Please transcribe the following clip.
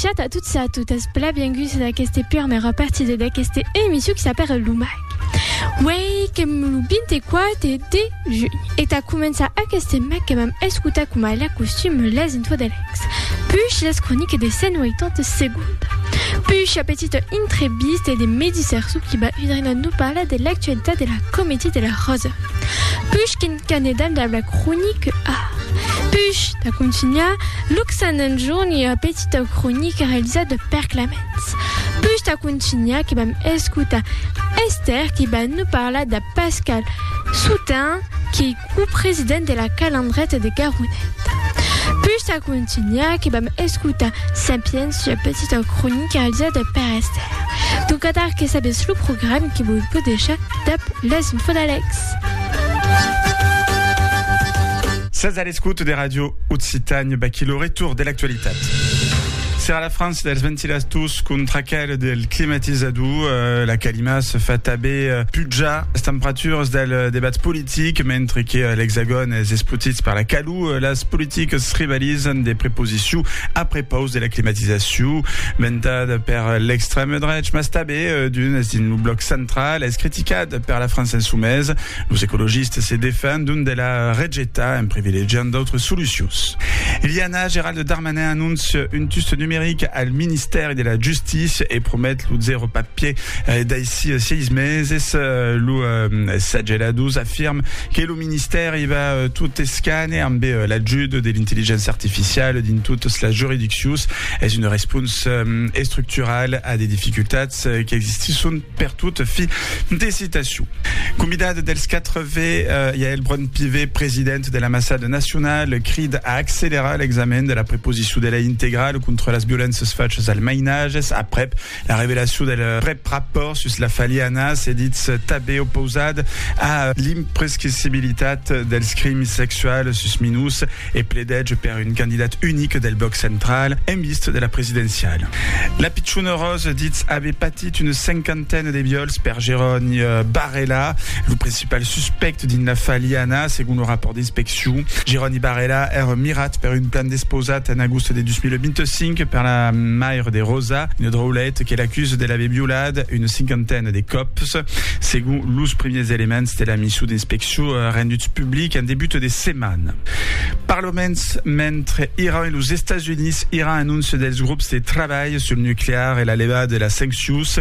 Chat a tots i a totes, benvinguts a aquesta primera partida d'aquesta emissió que s'apara l'UMAC. Uei, que lo 24 de juny, e ta començar aquesta mac que vam escutar com a la costum les infos de l'ex, puix les croniques de 180 segondes, puix la petita entrevista de Medi Sarsou qui va venir nous parlar de l'actualitat de la comédie de la Rosa, puix qu'en Canedal dab la cronique art. Push da contunhar Luxan en jorn e ua petita cronique realizada de Per Claments. Push da contunhar que vam escotar Esther qui va nous parlar da Pascal Soutain qui ei copresident de la Calandreta de Garonet. Push da contunhar que vam escotar Sapiens ua petita cronique realizada de Per Esther. Donc atar que sabetz lo programe que vos vau deishar Dab les Vodalecs. Sètz a l'escòuta de Ràdio Occitània, vaquí lo retorn de l'actualitat. Serà la frança dels ventilators contra aquel del climatizador, eh, la calima se fa tanben eh, pujar las temperaturas del eh, debat politic, mentre que eh, l'Hexagòn es espotit per la calor, eh, las politicas rivalizan de preposició a prepaus de la climatizacion, ventada per l'extrèma drech, mas tanben P. Dunes, dins lo blòc central, es criticat per la França en çò mes. Los ecologistes se defen d'un de la rejetar en privilegiant d'autres solucions. Liana, Gerald Darmanin anóncia un tust numeric al ministèri de la Justícia e promet lo zèro papier daicí 6 meses. Lo Sagela Dous afirme que lo ministèri va tot escane ambe l'ajut de l'intelligença artificiala dins totas las juridiccions. Es una responsa estructurala a de dificultats qu'existisson pertot, fi de citacion. Convidada dels 4 V, Yaël Braun-Pivet, presidenta de l'Ambassada Nacionala, crida a accelerar l'examen de la preposicion de lei integrala contra las violéncias fachas al mainatges, aprèp La revelacion del prèp rapòrt sus la faliana se ditz tanben opausat a l'imprescrissibilitat dels crims sexuals sus minors e pledètge per un candidat unic del blòc central en vista de la presidenciala. La pichona Rose ditz aver patit una cinquantena de viòls per Jeroni Barrela, lo president. Pel suspèct dins la Faliana, segon lo rapòrt d'inspeccion, Jeroni Barela èra mirat per un plan despausat en agost de 2025 per la maire de Rosa, una draulet que l'acusa de l'aver violat una cinquantena de còps, segon los primièrs elements de la mission d'inspeccion renduts publics en debut de setmana. Per lo mens, mentre Iran e los Estats Units, Iran anóncia dels grops de trabalh sul nuclear e la levada de las sanccions,